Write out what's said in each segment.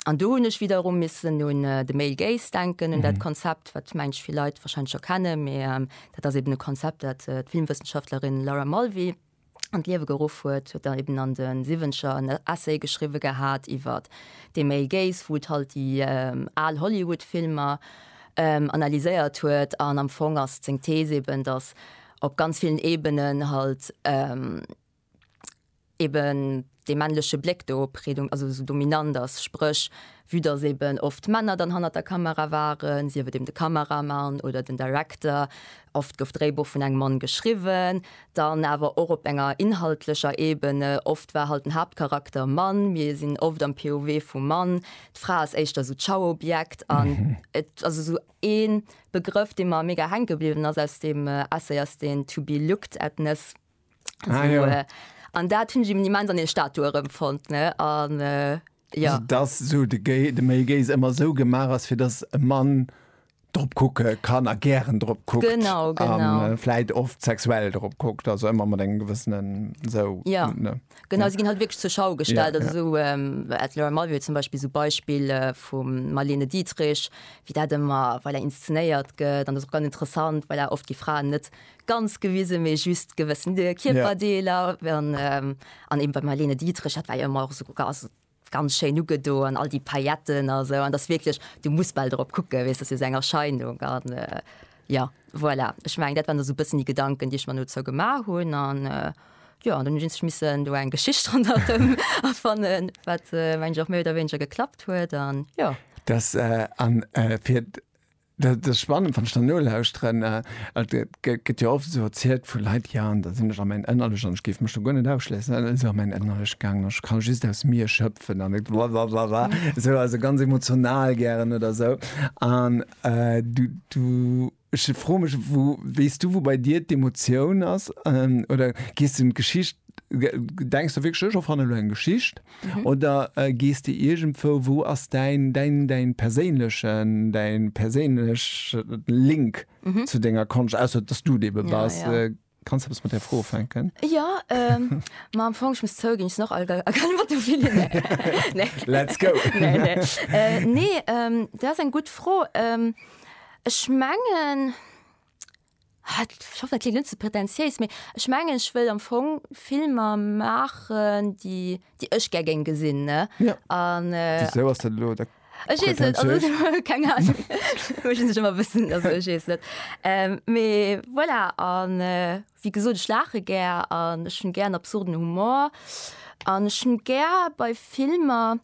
An do hunn ech wiederum missen un de Male Gaze denken, un dat Konzept, wat mengt vill Leit wahrscheinlech scho kennen, mee dat ass eben e Konzept, dat d'Filmwëssenschaftlerin Laura Mulvey an d'Liewe geruff huet, huet dann eben an de Siwwenzeger en Essay geschriwwe gehat iwwer de Male Gaze, wou et halt déi al Hollywood-Filmer analyséiert huet. An am Fong ass seng Thees eben, dass op ganz villen Ebenen halt, eben dee männleche Bléck do predom also esou dominant ass, spréch vue datt eben oft Männer dann hannert der Kamera waren, sief et eben de Kameramann oder den Director, oft gouf d'Dréibuch vun engem Mann geschriwwen, dann awer och op enger inhaltlecher Ebene, oft war halt den Haaptcharakter Mann, mir sinn oft am POV vum Mann, d'Fra ass éischter esou d'Schauobjekt an et ass esou ee Begrëff, dee mer mega hänke bliwwen ass aus deem Essay ass deen To be looked at-ness. Ah, so, ja. An dat hunn ech im Immens an den Statue erëmfonnt ne an äh, ja. Also, dass so de, Gay, de Male Gaze ëmmer sou gemaach ass, fir dass e Mann drop kucke kann a gären drop kuckt. Genau, genau. An äh, vläit oft sexuell drop kuckt, also ëmmer mat engem gewëssenen sou. Ja. Ne? Genau, ja. sie ginn halt wirklich zur Schau gestellt. Ja, also ja. so ähm, at Laura Mulvey zum Beispiel so Beispiel äh, vum Marlene Dietrich, wie dat immer, weil er inszenéiert gëtt, an das ist ganz interessant, weil er oft die Frauen net ganz gewisen méi just gewëssen de Kierperdeeler an an eben bei Marlene Dietrich hat war jo ëmmer och sou gass ganz schéin ugedo an all déi Pailletten a sou an datt wierklech du muss bal drop kucke weess datt se seng Erscheinung an jo voilà ech meng dat waren der sou bëssen déi Gedanken déi ech mer dozou gemaach hunn an jo an dann hunn ech missen do eng Geschicht ronderëm erfannen wat mengen ech och méi oder wéineger geklappt huet an jo. Datt an fir Dat ass spannend, wann ech der nolauschteren. Et gëtt jo oft esou erzielt vu Leit, jo, an da sinn ech a mäin Ënnerlecht an ech géif mech do guer net ausschléissen, an dann si se a mäin Ënnerlecht gaangen an ech kann just aus mir schëpfen an et wa wa wa wa esou, also ganz emotional gären oder esou. An du, du, ech froe mech, wou, weess du, wou bei dir d'Emotioun ass? Oder gees du un d'Geschicht, denks de wierklech, ech erfanne lo eng Geschicht? Oder gees de iergendwou, wou ass däin, däin, däin perséinlechen, däin perséinlechen Link zu denger Konscht, ausser dass du dee bebass? Ja, ja. Kanns eppes mat där Fro ufänken? Jo, ma am Fong, ech muss zouginn, ech sinn och alt a a kann Auto fille, nee. Let's go! Nee, nee. Nee, dat ass eng gutt Fro. Ech mengen, Ech hoffen, et klingt net ze pretentiéis, mee ech mengen, ech wëll am Fong Filmer maachen, déi ech gär géing gesinn. Wisou ass dat elo da pretentiéis? Keng Ahnung. Ech hu sech ëmmer e bëssen, also ech weess net. Mee voilà, a wéi gesot, ech laache gär an ech hunn gär absurden Humor an ech hunn gär bei Filmer,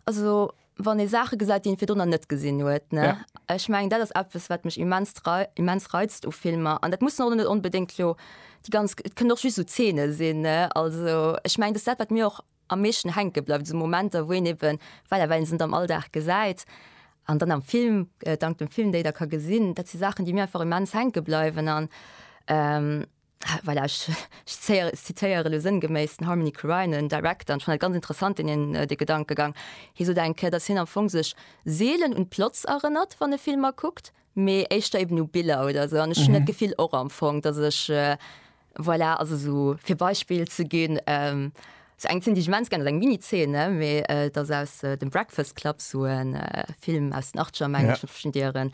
also wann ee Saache gesäit, déi ee virdrunner net gesinn huet. Ne? Ja. Ech meng, dat ass eppes, wat mech immens, rei immens reizt u Filmer. An dat mussen och net onbedéngt lo déi ganz, et kënnen och just esou Zeene sinn. Ne? Also ech meng, dat ass dat, wat mir och am meeschten hänke bleift, esou Momenter, wou een eben, voilà, well ee se net am Alldag gesäit an dann am Film, dank dem Film déi da ka gesinn, dat si Saachen, déi mir einfach immens hänke bleiwen. An, Voilà, ech zitéiere elo sënngeméiss den Harmony Korine, en Director, an ech fannen dat ganz interessant, deen hien, dee Gedankegang. Hie sot eng Kéier, datt hien am Fong sech seelen un d'Plots erënnert, wann e Filmer kuckt, mee éischter eben u Biller oder esou. An ech hunn dat Gefill och am Fong, datt ech, voilà, also esou fir e Beispill ze ginn, Sou eng zénnt ech immens gär, dat ass eng Mini-Zeene, mee et ass aus dem Breakfast Club, sou e Film aus den Achtzeger, meng ech, vun Dieren.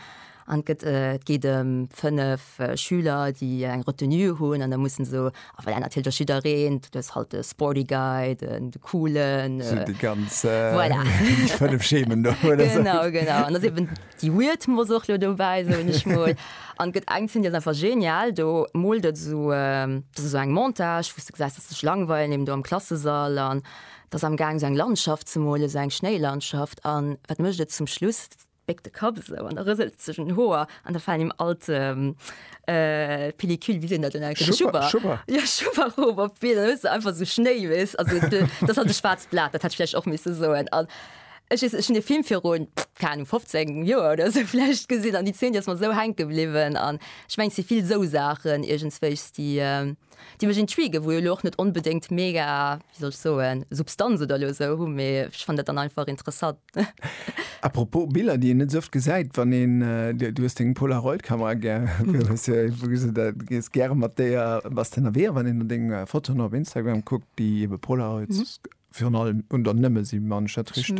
An et gëtt, et geet ëm fënnef Schüler, déi eng Retenue hunn an da mussen se, a voilà, natierlech ass jiddereen, du hues halt de Sporty Guy, den Coolen, voilà. Déi ganz fënnef Schemen do. Genau, genau. An et ass eben Déi Weird muss och lo dobäi, soen ech mol. An et gëtt eng Zeen, déi ass einfach genial, do moolt et esou, dat ass esou eng Montage, wou s de gesäis, dass se sech langweilen eben do am Klassesall an et ass amgaang esou eng Landschaft ze molen, esou eng Schnéilandschaft. An wat mécht et zum Schluss? Et béckt de Kapp esou an da rëselt et sech un den Hoer an da falen him all d'Pellicule, wéi seet een dat dann eigentlech, Schubber, Schubber, jo Schubber erof op d'Been an da hues de einfach esou Schnéi, weess, also dat ass halt e schwaarzt Blat, dat hätt ech vläicht och misse soen. Ech weess net, ech hunn dee Film virun, keng Ahnung, 15 Joer oder esou vläicht gesinn an déi Zeen, déi ass mer esou hänke bliwwen. An ech mengen, et si vill esou Saachen iergendswéis, déi, déi mech intriguë, wou jo elo och net onbedéngt mega, wéi soll ech soen, Substanz oder elo esou hunn, mee ech fannen dat dann einfach interessant. Apropos Biller, déi een net esou oft gesäit, wann een, du hues deng Polaroid-Kamera gär, hues du, wou gees du, gees gäre mat déier, bass de ënnerwee? A wann een no denge Fotoen op Instagram kuckt, Déi ebe Polaroids virun allem, oder nëmme si man, ech dat richteg?